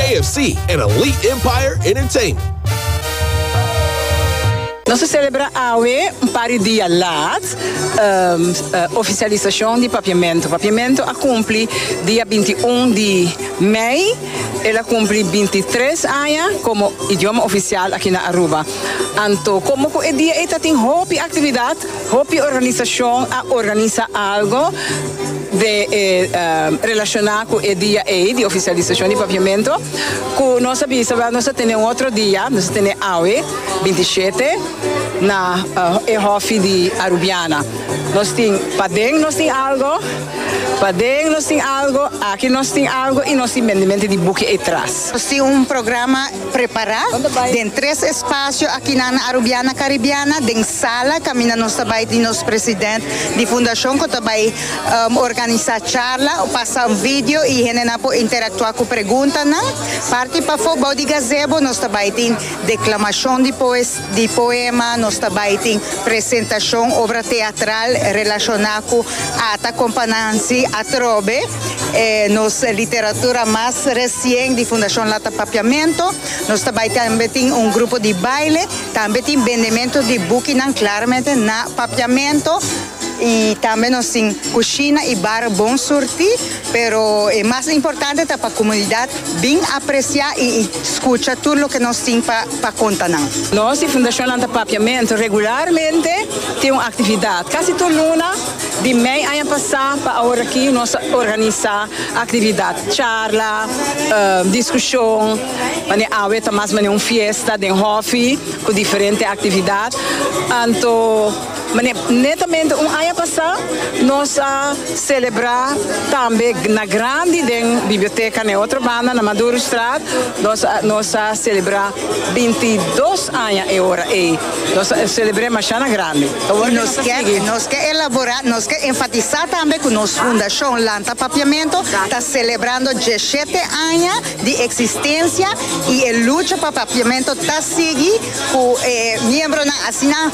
AFC en Elite Empire Entertainment. Nos a celebra awe, un par di dia laat, oficialisacion di Papiamento. Papiamento a cumpli dia binti un di mei, el a cumpli binti tres aña como idioma oficial aki na Aruba. Anto, como cu e dia ei ta tin hopi actividad, Hopi organisashon a organisa algo de e relashoná ku e dia ei di ofisialisashon di papiamentu ku nos a bisa wèl nos ta tene un otro dia, nos ta tene awe binti shete na e hòfi di Arubiana. Nos tin paden nos tin algo, paden nos tin algo, aki nos tin algo i nos tin bendemente di buki ei tras. Nos tin un programa. Prepará den tres espasio akinan na Arubiana Caribiana, den sala kaminda nos ta bai di nos president di fundashon ku ta bai organisá charla, pasa un video i hendenan por interaktuá ku preguntanan. Parti pafó bou di gazebo nos ta bai tin deklamashon di poesia. Di poema nos ta bai tin presentashon obra teatral relashona ku Ata kon pa Nansi atrobe, e nos literatura mas resien di Fundashon Lata Papiamentu. Nos ta bai tambe tin un grupo di baile, tambe tin bendementu di bukinan klaramente na Papiamentu i tambe nos tin kushina i bar Bon Surti. Pero e mas importante ta pa komunidat bin apresiá i skucha tur loke nos tin pa pa konta nan. Nos di Fundashon Lanta Papiamentu regularmente tin un aktividat. Kasi tur luna di mei aña pasá pa aworakí nos a organisá aktividat, charla, diskushon, manera awe ta mas manera un fiesta den hòfi ku diferente aktividat. Anto. Netamente un aña pasá nos a selebrá tambe na grandi den biblioteca na e otro banda, na Madurostraat, nos a nos a selebrá binti dos aña e ora ei. Nos a selebr'é mashá na grandi. I nos ke nos ke elaborá, nos ke enfatisá tambe ku nos Fundashon Lanta Papiamentu ta selebrando djeshete aña di eksistensia i e lucha pa papiamentu ta sigui ku e miembronan asina,